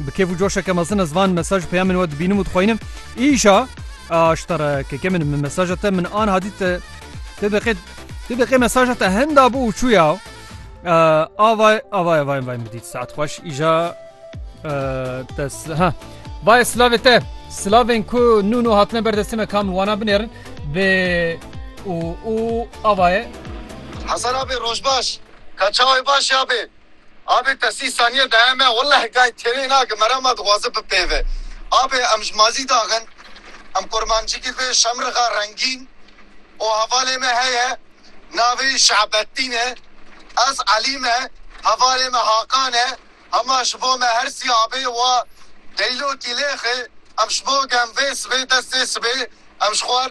Bi kêf û coşeke mezin ez van mesaj peyamên we dibînim û dixwînim. Îşa aştara keke min min mesaja te min an hadî te tê deqê tê deqê mesaja te henda bû û çûya avay avay avay vay min dît saet xweş îja te ha vay silavê te silavên ku nû nû hatine berdestê me kam wana binêrin bê û û avaye Hasan abi rojbaş. Kaçaoy baş abi. Abê te sî saniye daye me welleh gay têrê nake merama dixwaze bipêve. Abê em ji mazî daxin em kurmancikî vê şemrixa rengîn û hevalê me heye navê wî Şe'bettîn e ez Elî me hevalê me Hakan e hema ji bo me her sî abê wa Deylokî lêxê em ji bo gem vê sibê destê sibê em ji xwar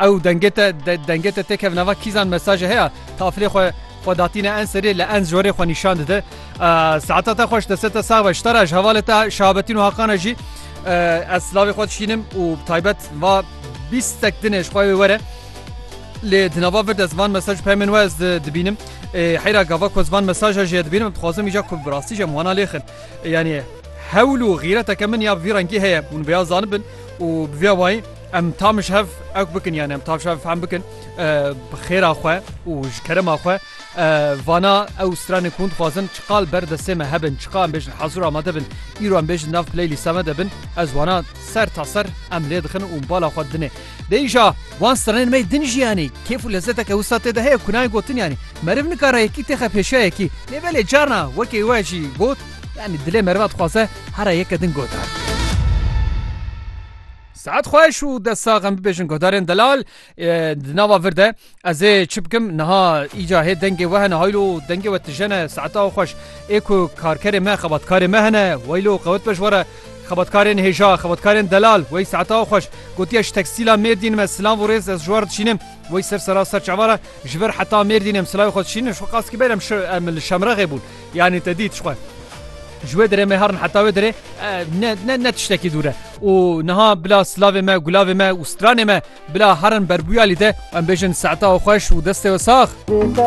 Ew dengê te dengê te têkev nava kîzan mesajê heye tafilê xwe xwe datîne en serê li en jorê xwe nîşan dide. Saeta te xweş deste te sax be ji te re ji hevalê te şahabetîn û haqana jî ez silavê xwe dişînim û bi taybet va bîstek dinê ji xwe wê were. Lê di nava vir de zivan mesaj pemên we ez dibînim. Heyra gava ku zivan mesaja jê dibînim dixwazim îja ku bi rastî jî em wana lêxin. Yanî hewl û xîreteke min ya bi vî rengî heye hûn vêya zanibin û bi vêya wayî Em tam ji hev ewk bikin yan em tam ji hev fehm bikin bi xêra xwe û ji kerema xwe vana ew stranên ku dixwazin çiqal ber destê me hebin çiqa em bêjin hezûr amade bin îro em bêjin nav playlîsta me de bin ez wana ser ta ser em lê dixin û bala xwe dinê deyja wan stranên me din jiyanî kêf û lezzeteke wisa tê de heye ku nayê gotin yanî meriv nikara yekî têxe pêşiya yekî lê belê carna wekê we jî got yanî dilê meriva dixwaze hera yeke din gotar. Saet xweş û dest sax em bibêjin guhdarên delal di nava vir de ez ê çi bikim niha îca hê dengê we hene haylo dengê we tijene saeta xweş ê ku karkerê me xebatkarê me hene weylo qewet be ji were xebatkarên hêja xebatkarên delal wey saeta xweş gotiye ji tekstîla mêrdîn me silav û rêz ez ji war dişînim wey ser sera ser çavara ji vir heta mêrdîn em silayê xwe dişînin ji xwe qas ki ber em em li şemrexê bûn Yanî te dît ji xwe. Ji wê dirê me herin heta wê dirê ne ne ne tiştekî dûr e û niha bila silavê me gulavê me û stranê me bila herin berbûyalî te em bêjin saeta xweş û destê we sax.